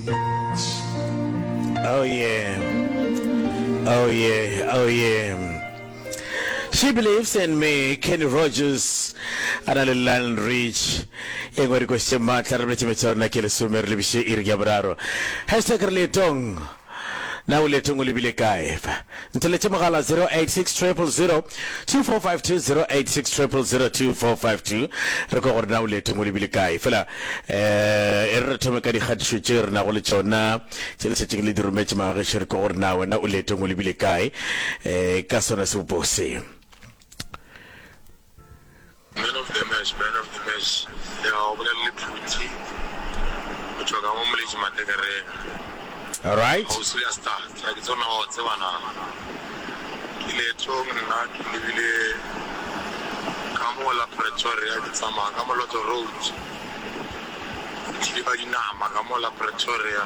Oh yeah. Oh yeah. Oh yeah. She believes in me, Kenny Rogers, a na le Lionel Rich. E ngwe dikoši tše maatla re boletše metša rona ke lesome re lebiše iri ya boraro. Hashtag re leetong. Na o leetong o lebile kae? Ntheletše mogala 0860002452 0860002452 re kwe gore na o leetong o lebile kae fela eh e re re thome ka dikgatišo tše re nago le tšona tše le šetšeng le di rometše magageši re kwe gore na wena o leetong o lebile kae eh ka sona sebopo se Man of the match, man of the match, ya ga go bolela le phuti, o tšwa ka mo moletši matekereng, Alright. kgauswi ya star, ga ke tsona wa tseba na, ke leetong nna ke lebile ka mo la Pretoria, ke tsamaya ka moloto road, ke thile ba dinama ka mo la Pretoria.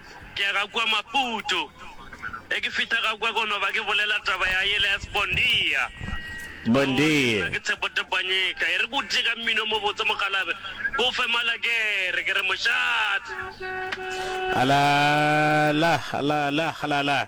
Ke ya ga kua Maputo, ge ke fihla ga kua ke no ba ke bolela taba ya yela ya Sbondia. Sbondia. Nna ke Tshepo Tepanyika. E re ke o tliše ka mmino o mobotse mokgalabje, ke o fe malakere, ke re mošate. Ala, la, la, la, la, la.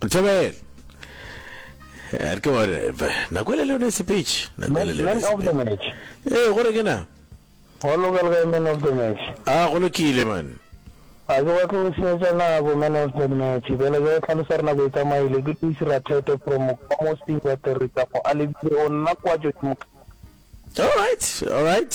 Thabela. Eh, ke gore nako le lone speech nako le lone speech eh gore ke na go lokela ga men of the match ah go lokile man a ke wa tlo senyetsa nako men of the match bela ke go tlhalosa re nako e tsamaile ke tlise ra thete from ka mo se ba tere tsa go a lebile o nna kwa jo ke mo all right all right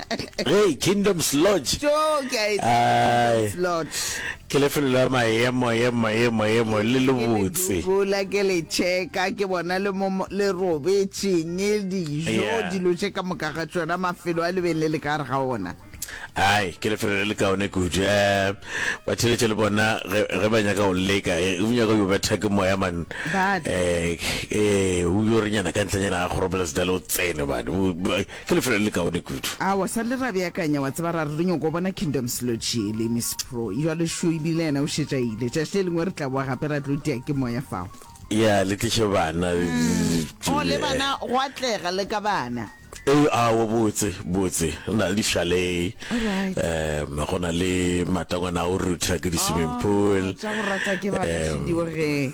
ge kingdoms lodge tjo ke a e tseba Ai. Kingdom's Lodge. ke lefelo la maemo emo emo emo le Ke lobotse dubola ke le checka ke bona le mo mo- le robetšeng dijo Yeah. dilo tše ka moka ga tšona mafelo a lebeng le le ka gare ga ona ai ke lefelo le le kaone kudu um batheletše le bona ge ge ba nyaka go leka eh, o nyaka yo betha ke moya man Ba- um o yo re nyana ka ntlenyana ga kgoropela sedale o tsene bane Ke lefelo le lekaone kudu. A wa sa le ra beakanya, wa tseba, ra re re nyoko bona Kingdom Sludge yele, Miss Pro. Jwale šo e bile yena o šetše a ile. Tšatši le lengwe re tla boa gape ra tlo tia ke Moya fao. Ya, le tliše bana. Oh, le bana, go atlega le ka bana. Ee, aowa, botse, botse. Re na le di-chalet. All right. Um, go na le matangwana a go rutha ke di-swimming pool. Oh, tša go rata ke ba, Kgahlediyo ge.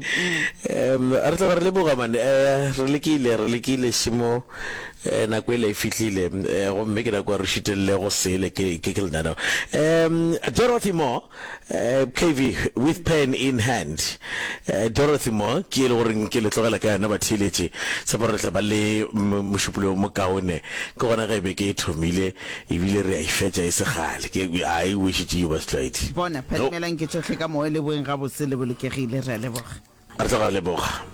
um re tloga re leboga mane um re lekile re lekile šemo um nako ele e fihlile um gomme ke nako re šitelele go sele ke ke ke lenaneo um dorothy mo um eh, kv with pen in hand um dorothy mo ke e le goreng ke le tlogela ka yona batheeletše tshepo re tla ba le mm, mošupologo mokaone ke gona ge e be ke e thomile e bile re a e fetša e se kgale. Ke a e wešitše yo, Basetlwaedi. Bona, phadimelang ke tšohle ka moya, le boeng gabotse le bolokegile. Re a leboga. Re tla go leboga.